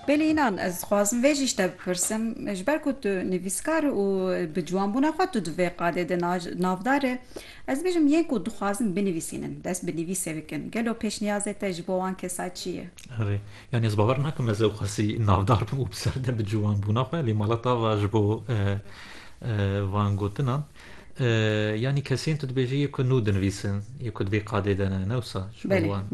Belê înan ez dixwazim vê jî ji te bipirsim ji ber ku tu nivîskar û bi ciwanbûna xwe tu di vê qadê de navdar î ez dibêjim yên ku dixwazin binivîsînin dest bi nivîsê bikin gelo pêşniyazê te ji bo wan kesa çi ye? Erê yanî ez bawer nakim ez ew qasî navdar bim û bi ser de bi ciwanbûna xwe lê mala tava ji bo van gotinan Yanî kesên tu dibêjî yê ku nû dinivîsin, yê ku divê qadê de ne, ne wisa? Ji ber wan.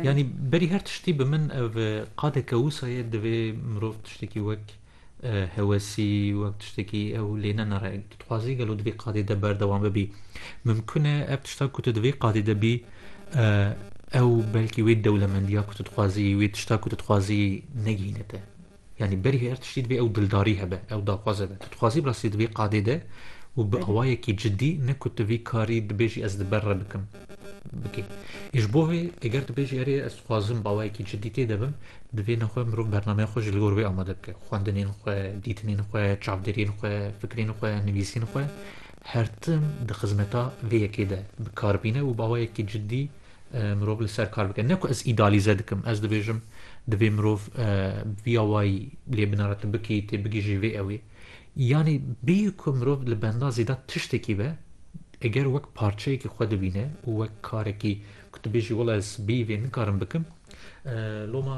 Yanî berî her tiştî bi min ev qadeke wisa ye divê mirov tiştekî wek hewesî, wek tiştekî ew lê ne nere. Tu dixwazî gelo di vê qadê de berdewam bibî. Mimkun e ev tişta ku tu di vê qadê de bî ew belkî wê dewlemendiya ku tu dixwazî, wê tişta ku tu dixwazî negihîne te. Yanî berî her tiştî divê ew dildarî hebe, ew daxwaz hebe. Tu dixwazî bi rastî di vê qadê de û bi awayekî cidî ne ku tu vî karî dibêjî ez li ber re bikim bikî. Ê ji bo vê eger tu bêjî erê ez dixwazim bi awayekî cidî tê de bim, divê ne xwe mirov bernameya xwe ji li gor wê amade bike. Xwendinên xwe, dîtinên xwe, çavdêriyên xwe, fikrên xwe, nivîsên xwe her tim di xizmeta vê yekê de bi kar bîne û bi awayekî cidî Mirov li ser kar bike. Ne ku ez îdealîze dikim. Ez dibêjim divê mirov viya wayî lê binare tu bikî, tê bigihîjî vê ewê. Yanî bêyî ku mirov li benda zêde tiştekî be eger wek parçeyekî xwe dibîne û wek karekî ku tu bêjî wela ez bêyî vê nikarim bikim loma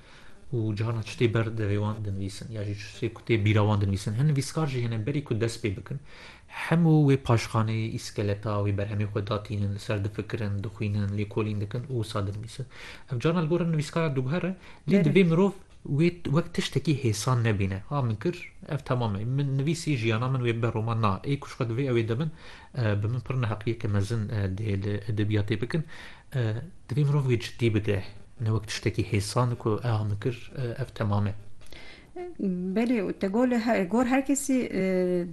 û cihana çi tê ber devê wan dinivîsin ya jî çi tê ku tê bîra wan dinivîsin. Hin nivîskar jî hene berî ku dest pê bikin hemû wê paşxaneyê, îskeleta wê berhemê xwe datînin, li ser difikirin, dixwînin, lêkolîn dikin û wisa dinivîsin. Ev carna li gorî nivîskara dûguher e lê divê mirov wê wek tiştekî hêsan nebîne, ha min kir ev temam e, min nivîsî jiyana min wê bibe roman na, ê ku ji xwe divê ew ê de bin Bi min pir neheqiyeke mezin dê li edebiyatê bikin. Divê mirov wê ciddî bide, ne wek tiştekî hêsan ku eha min kir, ev temam e. Belê, te gol gor her kesî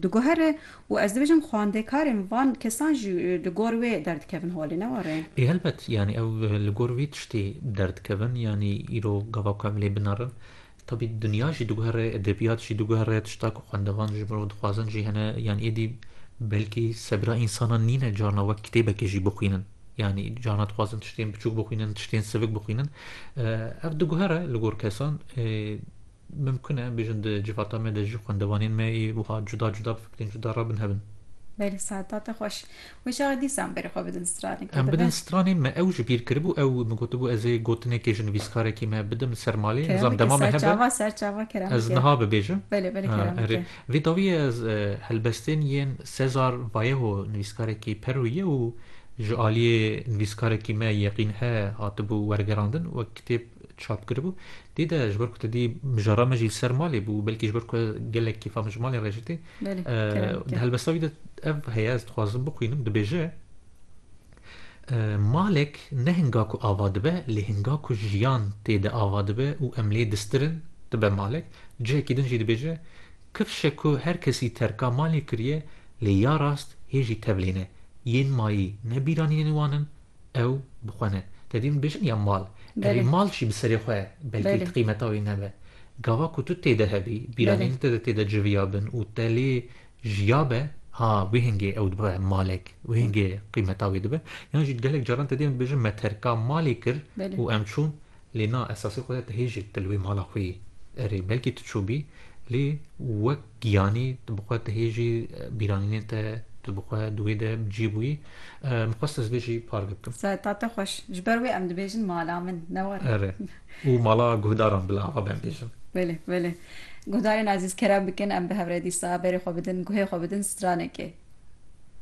diguhere û ez dibêjim xwendekarên van kesan jî li gor wê derdikevin holê, ne were? Ê helbet, yanî ew li gor vê tiştê derdikevin, yanî îro gava ku em lê binarin, Tabî dinya jî diguhere, edebiyat jî diguhere, tişta ku xwendevan ji mirov dixwazin jî hene. Yanî êdî belkî sebira însanan nîne carna wek kitêbekê jî bixwînin. Yanî carna dixwazin tiştên biçûk bixwînin, tiştên sivik bixwînin. Ev diguhere li gor kesan. Mimkun e bêjin di civata me de jî xwendevanên me ê wiha cuda cuda bifikirîn, cuda rabinhevin. Belê saetate xweş. Mijara dîsan berê xwe bidin stranê. Em bidin stranê me ew ji bîr kiribû ew min gotibû ez ê gotinekê ji nivîskarekî me bidim ser malê nizam dema me hebe ez niha bibêjim. Erê vê dawiyê ez helbestên yên Cesar Vallejo nivîskarekî Perûyî ye û ji aliyê nivîskarekî me Yeqîn He hatibû wergerandin wek kitêb çap kiribû. Dî de ji ber ku tu dî mijara me jî li ser malê bû, belkî ji ber ku gelek kêfa min ji malê re jî tê. Di helbesta wî de ev heye ez dixwazim bixwînim dibêje Malek ne hinga ku ava dibe lê hinga ku jiyan tê de ava dibe û em lê distirin dibe malek. Cihekî din jî dibêje Kifşe ku her kesî terka malê kiriye lê ya rast hê jî tevlêne. Yên mayî ne bîranînên wan in Ew bi xwe ne. Te dîn bêjin ya mal. Erê mal jî bi serê xwe belkî qîmeta wî nebe. Gava ku tu tê de hebî, bîranîn te de tê de civiya bin û te lê jiya be, ha wihingê ew dibe malek, wihingê qîmeta wê dibe. Yan jî gelek caran te dîn bêjin me terka malê kir û em çûn, Lê na esasê xwe de tu hê jî tu li wê mala xwe yî. Erê belkî tu çûbî lê wek giyanî tu bi xwe tu hê jî bîranînên te tu bi xwe di wê de bi cî bûyî. Min xwest ez vê jî parve bikim. Sereta te xweş. Ji ber wê em dibêjin mala min ne were. Erê. Û mala guhdaran bila ava ben bêjim. Belê belê. Guhdarên ezîz kerem bikin em bi hev re dîsa berê xwe bidin guhê xwe bidin stranekê.